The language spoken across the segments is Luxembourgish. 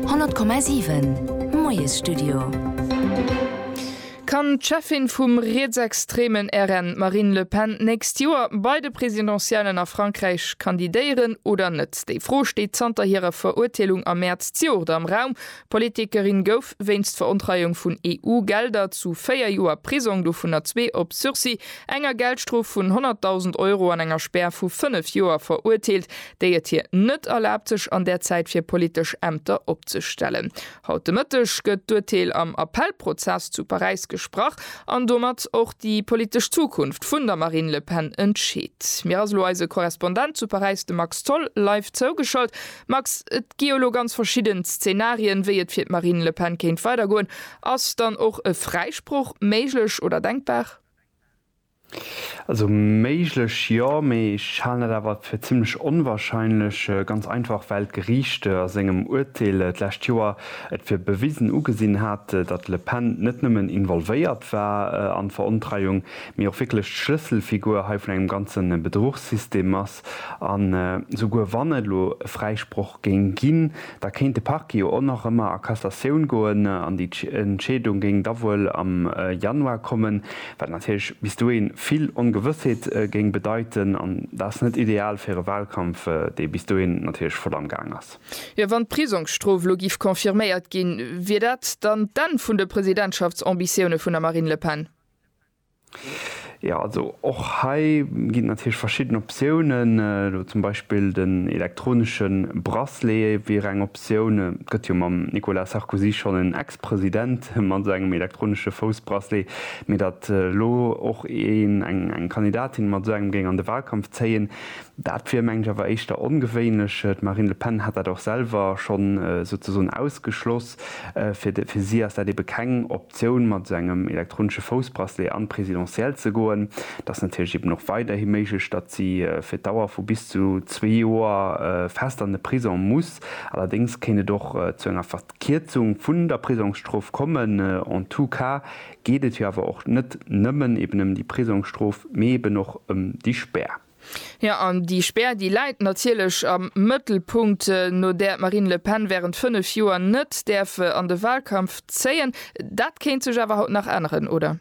100,7 Moiesstudio. Kann d'Cheffin vum rietsextremen RN, d'Marine Le Pen, d'nächst Joer bei de Presidentiellen a Frankräich kandidéieren oder net? Déi Fro steet zanter hirer Verurteelung am Mäerz zejoert am Raum. D'Politikerin gouf wéinst Verontreiung vun EU-Gelder zu véier Joer Prisong, dovunner zwee op Sursis, enger Geldstrof vun 100.000 Euro an enger Spär vu fënnef Joer verurteelt. déi et hir net erlaabt sech an där Zäit fir politesch Ämter opzestellen. Haut de Mëtteg gëtt d'Urteel am Appellprozess zu Paräis gesprach an domat och déi politesch Zukunft vun der Marine Le Pen entscheet. Mir ass elo eise Korrespondent zu Paräis de Max Tholl live zougeschalt. Max, et gi jo elo ganz verschidden Szenarien, wéi et fir d'Marine Le Pen kéint weidergoen. Ass dann och e Fräisproch méiglech oder denkbar? Also méiglech jo, mee ech halen dat awer fir zimmlech onwahrscheinlech, ganz einfach well d'Geriichte a sengem Uerteel d'lescht Joer et fir bewisen ugesinn haten, datt d'Le Pen net nëmmen involvéiert war an d'Verontreiung, mee och wierklech d'Schlësselfigur hei vun engem ganze Bedruchssystem ass. An esouguer wann et elo e Fräisproch géing ginn, Da kéint de Parquet jo och nach ëmmer a Cassatioun goen an déi Entscheedung géing da wuel am Januar kommen, wat natierlech bis dohi vill Ongewëssheet géing bedeiten. An dat ass net ideal fir e Wahlkampf, dee bis dohi natierlech voll am Gaang ass. Jo, wann d'Prisongsstrof elo giff confirméiert ginn, wier dat dann d'Enn vun de Presidentschaftsambitioune vun der Marine Le Pen? Jo, also och hei ginn et natierlech verschidden Optiounen. Elo zum Beispill den elektronesche Bracelet wier eng Optioun. Et gëtt jo mam Nicolas Sarkozy schonn en Ex-President mat esou engem elektronesche Foussbracelet. Mee datt elo och een, eng Kandidatin mat esou engem géing an de Wahlkampf zéien, dat wier meng ech awer éischter ongewéinlech. D'Marine Le Pen hat dat och selwer schonn souzesoen ausgeschloss. Fir si ass dat ebe keng Optioun. D'Optioun mat esou engem elektronesche Foussbracelet an d'Presidentielle ze goen, dat ass natierlech eben och weiderhi méiglech. Datt si fir d'Dauer vu bis zu zwee Joer fest an de Prisong muss. Allerdéngs kéint et och zu enger Verkierzung vun der Prisongsstrof kommen. En tout cas geet et jo awer och net nëmmen eben ëm déi Prisongsstrof, mee eben och ëm déi Spär. Jo, an déi Spär, déi läit natierlech am Mëttelpunkt, no där d'Marine Le Pen wärend fënnef Joer net däerf an de Wahlkampf zéien. Dat kéint sech awer haut nach änneren, oder?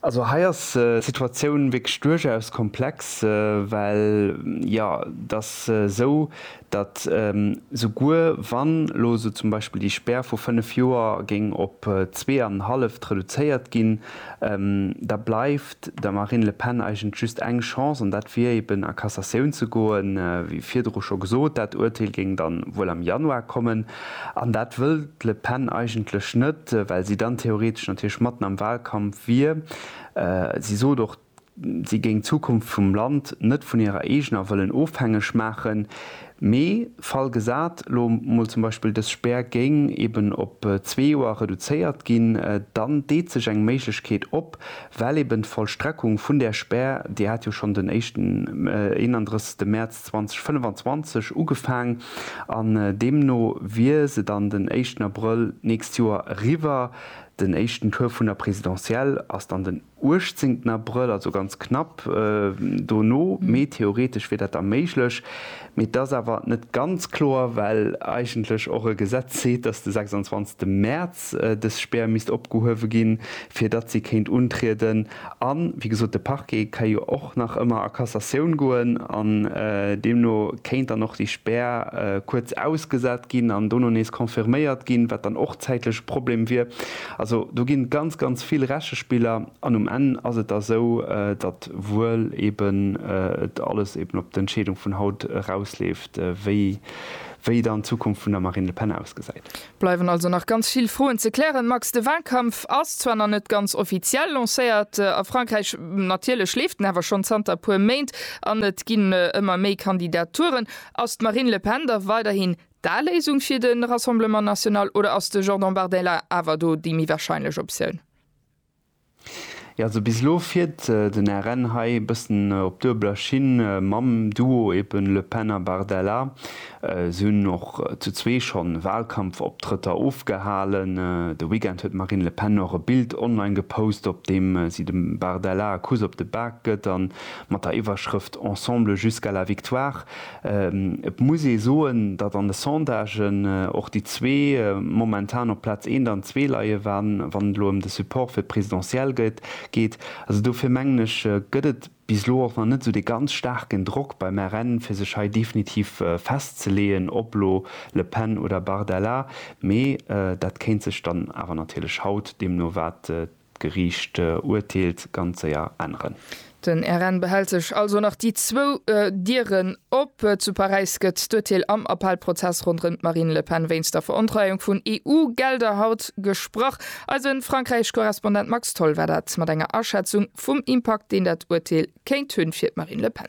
Also hei ass d'Situatioun wierklech duerchaus komplex, well, jo, et ass esou, datt souguer wann elo esou zum Beispill déi Spär vu fënnef Joer géing op zwee an en halleft reduzéiert ginn, da bleift der Marine Le Pen eigentlech just eng Chance, an dat wier eben a Cassatioun ze goen. Wéi virdru scho gesot, dat Urteel géing dann wuel am Januar kommen, an dat wëll d'Le Pen eigentlech net, well si dann theoretesch natierlech matten am Wahlkampf wier. Si sot och, Si géing d'Zukunft vum Land net vun hirer eegener wëllen ofhängeg maachen. Mee Fall gesat, lo mol zum Beispill dës Spär géing eben op zwee Joer reduzéiert ginn, dann deet sech eng Méiglechkeet op, well eben d'Vollstreckung vun där Spär, déi hat jo schonn den éischten, 31. Mäerz 2025 ugefaang an deemno wier se dann den éischten Abrëll d'nächst Joer eriwwer. Den éischten Tour vun der Présidentielle ass dann den. 18. Abrëll, also ganz knapp dono, mee theoretesch wier dat da méiglech. Mee et ass awer net ganz kloer, well eigentlech och e Gesetz seet, datt de 26. Mäerz dës Spär misst opgehuewe ginn, fir datt si kéint untrieden. A wéi gesot, de Parquet ka jo och nach ëmmer a Cassatioun goen an deemno kéint dann och déi Spär kuerz ausgesat ginn an dono nees confirméiert ginn, wat dann och zäitlech e Problem wier. Also do ginn ganz, ganz vill Rechespiller an um Enn ass et da sou, datt wuel eben et alles eben op d'Entscheedung vun haut erausleeft, wéi dann d'Zukunft vun der Marine Le Pen ausgesäit. Bleiwen also nach ganz vill Froen ze klären, Max. De Walkampf ass zwar nach net ganz offiziell lancéiert a Frankräich, natierlech leeft en awer schonn zanter e puer Méint an et ginn ëmmer méi Kandidaturen. Ass d'Marine Le Pen da weiderhin D'A Léisung fir de Rassemblement National oder ass de Jordan Bardella awer do déi méi warscheinlech Optioun? Jo, also bis elo fiert den RN hei e bëssen op duebeler Schinn mam Duo eben Le Pen a Bardella. Si hunn och zu zwee schonn Walkampfoptrëtter ofgehalen. De Weekend huet d'Marine Le Pen och e Bild online gepost, op deem si dem Bardella e Kuss op de Bak gëtt a mat der Iwwerschrëft Ensemble jusqu'à la victoire Et muss ee soen, datt an de Sondagen och déi zwee momentan op Plaz eent an zwee leien, wann et elo ëm de Support fir d'Presidentielle geet. Also dofir mengen ech, gëtt et bis elo och nach net esou dee ganz staarken Drock beim RN, fir sech hei definitiv festzeleeën, ob elo Le Pen oder Bardella. Mee dat kéint sech dann awer natierlech haut, deemno wat D'Geriicht urteelt ganz séier änneren. Den RN behält sech also nach déi zwou Dieren op. Zu Paräis gëtt d'Urteel am Appellprozess ronderëm d'Marine Le Pen wéinst der Verontreiung vun EU-Gelder haut gesprach. Eise Frankräich-Korrespondent Max Tholl war dat mat enger Aschätzung vum Impakt, deen dat Urteel kéint hunn fir d'Marine Le Pen.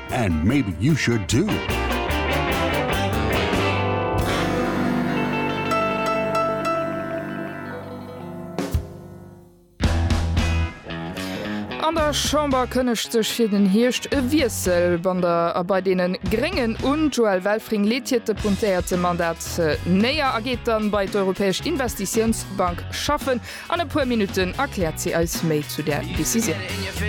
And maybe you should too. An der Chamber kënnegt sech fir den Hierscht e Wiessel ban der a bei deenen Gréngen un. D'Joëlle Welfring leet hiert Depuntéierte Mandat néier a geet dann bei d'Europäesch Investitiounsbank schaffen. An e puer Minutten erkläert si eis méi zu där Decisioun.